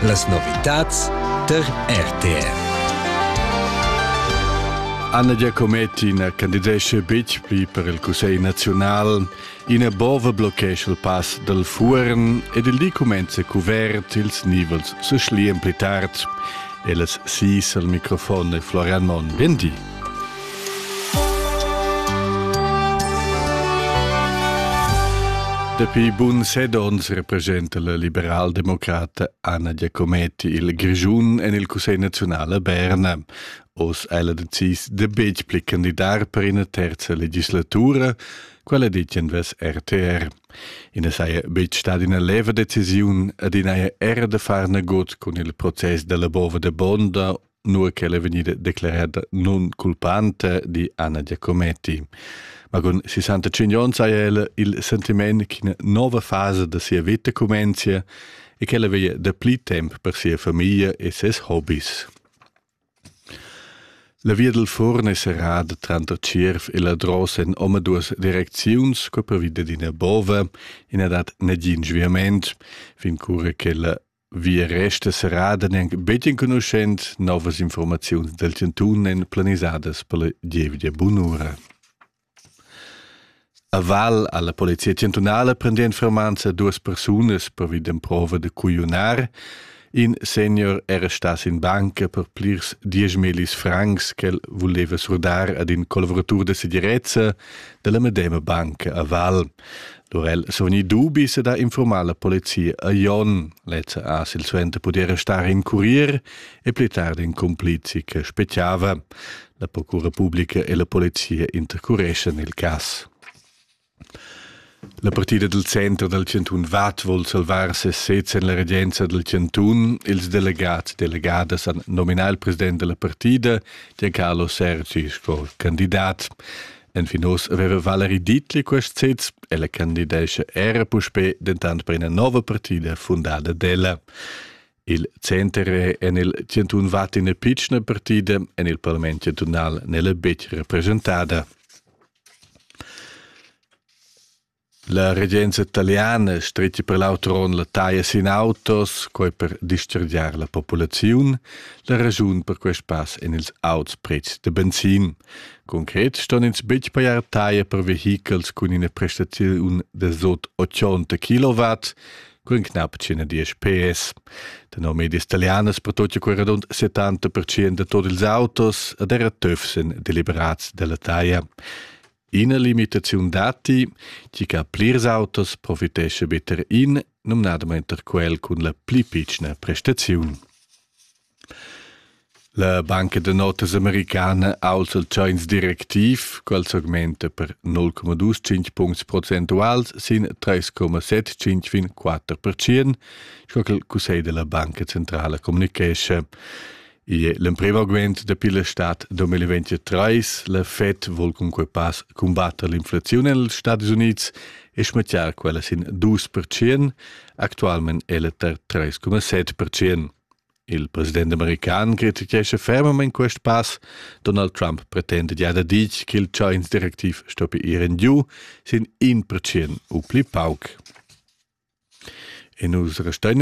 Las novitads tar RTR. Anna Giacometti na candidesce betg pli per il Cussegl naziunal. Ina bova bloccescha il pass dal Fuorn ed il di cumenza cuvert ils nivels se schlian pli tard. Ellas sis al microfon e Florian Monn. Bien di. Dapi bun set onns representa la liberaldemocrata Anna Giacometti il Grischun en il Cussegl naziunal a Berna. Oz è ella decis de betg pli candidar per ina terza legislatura, quella ditg en ves RTR. I na saja betg stata ina leva decisiun, ad ina era da far nagut cun il process della bova de Bonda nua ch'ella è vegnida declerada nun culpante di Anna Giacometti. Ma con 65 onns ha ella il sentiment che una nuova fase da sia vita comincia e che ella veglia da pli tempo per sia famiglia e ses hobbies. La via del forn è serrada tranto Cierf e la drossa in omaduas direcziuns co per via d'ina bova e na dat negin sviament fin cura che la Vi resta serrada neanc betg enconuschent novas informaziuns del chantun èn planisadas per la gievgia bunura. A Val alla Polizia Chantunala prende informanza duas persunas pervi d'emprova de cuiunar. In senior era stas in banca per plirs dieschmelis francs che el voleva surdar ad in colveratur de segirezza della medema banca a Val. Lur el suni dubi se da informar la polizia a Jon, lezza a silsuenter pudiera star in curier e pli tardi in complizi che speciava. La procura pubblica e la polizia intercureschan il cas. La partida del centro del Cantun Vad vuol salvar se sez en la regenza del Cantun. Ils delegats e delegadas han nominat il president della partida, Giancarlo Sergi, sco candidat. Enfin oz aveva Valerie Dietli quest sez, ella candidescha era puspè dentant per ina nova partida fundada d'ella. Il center è en il 101 vat ina pitschna partida, en il parlament chantunal n'è la betg representada. La regenza italiana stretga per l'auter onn la taglia sin autos, quai per dischargiar la populaziun, la raschun per quest pass en ils auts pretschs da benzin. Concret ston ins betg pajar taglia per vehichels cun ina prestaziun da sot 80 kW, cun knapp 110 PS. Tenor medias italianas pertutga quel radund 70% da tot ils autos ed era töfs en deliberats della taglia. Ina limitaziun datti, tgi che plirs autos profitesce better in, numnadamain per quel cun la pli pitschna prestaziun. La banca da notas americana aus el tschains directiv, qual s'augmenta per 0,25 puncts procentuals sin 3,75 fin 4%, sco che il Cussegl della Banca Centrala communichesce. Igl è l'emprim augment dapi la stad 2023. La Fed vul cunquai pas cumbatter l'inflaziun en ils Stadis Unids e schmattiar quella sin 2%. Actualment è la tar 3,7%. Il president american criticescha fermamain quest pass. Donald Trump pretenda gia da dir ch'il Chains-direktiv stoppi ir en giu sin 1% u pli pauc. E nus restein